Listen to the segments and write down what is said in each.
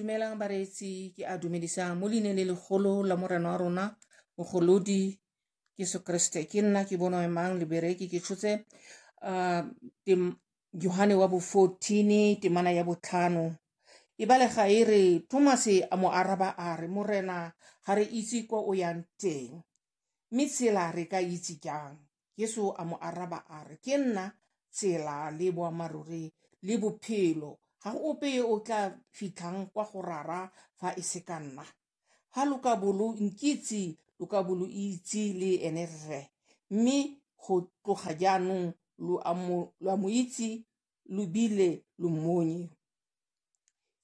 dumelang bareetsi ke a dumedisa mo leine le legolo la morena wa rona mogolodi jesu kriste ke nna ke bono emang libereki ke tshotse uh, yohane wa bo 14 temana ya botlhano e balega e re tomase a mo araba a re morena ga re itse kwa o yang teng mme tsela re ka itse jang Jesu a mo araba a re, Ke nna tsela le boammaaruri le bophelo. Ga go ope yo o tla fitlhang kwa go rara fa e se ka nna. Fa lo ka bo lo nkitse, lo ka bo lo itse le ene Rre. Mme go tloga jaanong lo a mo itse lo bile lo mmonye.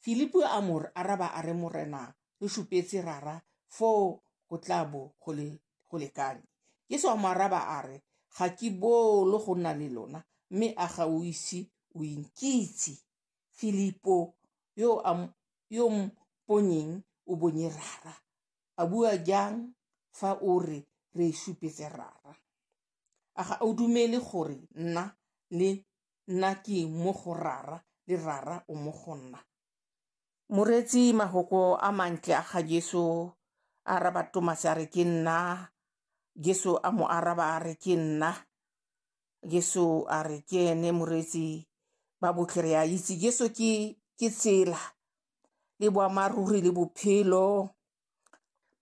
Filipo a mo araba a re morena re supetse rara foo go tla bo go le go lekane. Jesu a mo araba a re ga ke bolo go nna le lona mme a ga o ise o inkitse Filipo yo a yo mponyeng o bonye rara a bua jang fa o re re supetse rara. a ga o dumele gore nna le nna ke mo go rara le rara o mo go nna moreetsi mahoko a mantle a ga jesu a araba tomase a re ke nna jesu a mo araba a re ke nna jesu a re ke ene moreetsi ba botlhe re a itse jesu ke ke tsela le boammaaruri le bophelo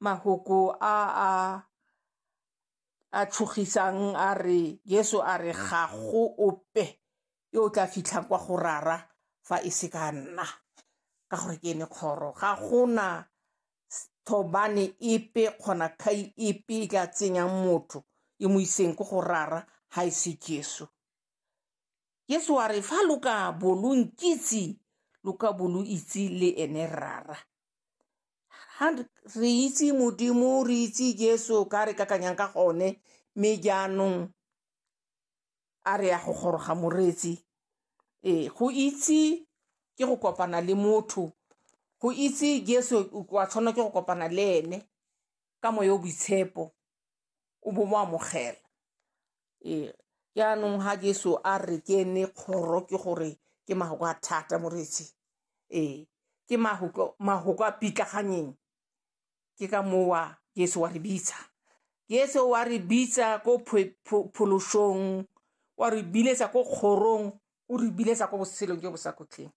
mahoko a a a tšhogisang a re Jesu a re ga go ope yo o tla fitlhang kwa go rara fa e se ka nna ka gore ke ene kgoro ga gona thobane epe kgona kgai epe e tla tsenyang motho e mo iseng ko go rara ga e se Jesu Jesu a re fa lo ka bo lo nkitse lo ka bo lo itse le ene rara ha re itse modimo re itse jesu ka re kakanyang ka gone mme jaanong a re ya go goroga moreetsi ee go itse ke go kopana le motho go itse jesu wa tshwanela ke go kopana le ene ka moya o boitshepo o bo mo amogela Ee, jaanong ga Jesu a re ke ene kgoro ke gore ke mahoko a thata moreetsi ee ke mahoko a pitlaganyeng ke ka mowa Jesu wa re bitsa Jesu wa re bitsa ko phološong wa re biletsa ko kgorong o re biletsa ko botshelong jo bo sa kgotlheng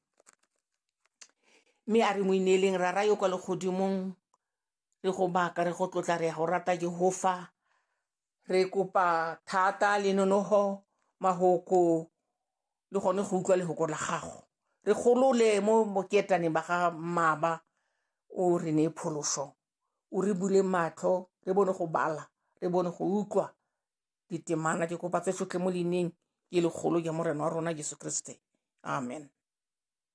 mme a re mo ineeleng rara yo kwa legodimong re go baka re go tlotla re ya go rata Jehofa re kopa thata le nonoho mahoko le gone go utlwa lehoko la gago re golole mo boketaneng ba ga mmaba o re ne pholoso o re bule matlho re bone go bala re bone go utlwa ditemana ke kopa tse sotlhe mo leineng ke legolo ja morena wa rona jesu kriste amen.